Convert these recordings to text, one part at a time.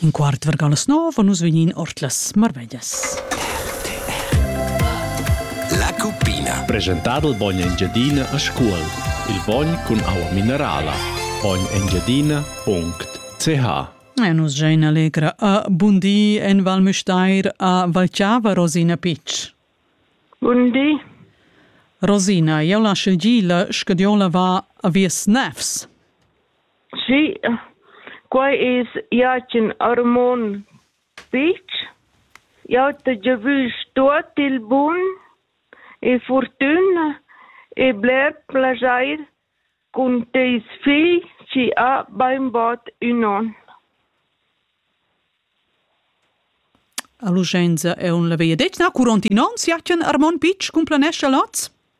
In quart varga las nov nus vegnin ord las marveglias. La cuppina. Presentadel bogn Engiadina a Scuol. Il bogn cun aua minerala. Bognengiadina.ch E nus gein allegra a Bundi en Val Müstair a Valchava Rosina Pitsch. Bundi. Rosina, jau laschel gi la scadiola va a vies nefs. Sì, quai es Jachen Armon Pitsch. Jau t'he giavüsch tuot il bun, e furtüna e bler plaschair cun teis figl chi ha bainbod ün on. A l'uschenza eau nun l'avaja dit, na, curont in ons, Jachen Armon Pitsch cumplanescha l'hoz?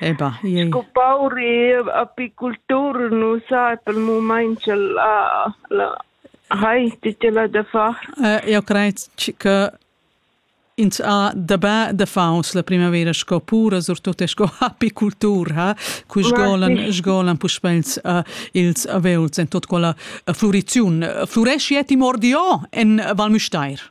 Eh bah, ei. Sco pauri apicultur nu sa pel mumaint ch'el ha la hai titela da far. Eh, eu cret che ins ha dabà da faus la primavera sco pura, surtut sco apicultur, ha? Cu sgolan, sgolan puspels uh, ils aveuls en tot quella uh, fluriziun. Fluresci et i mordi o en Val Müstair.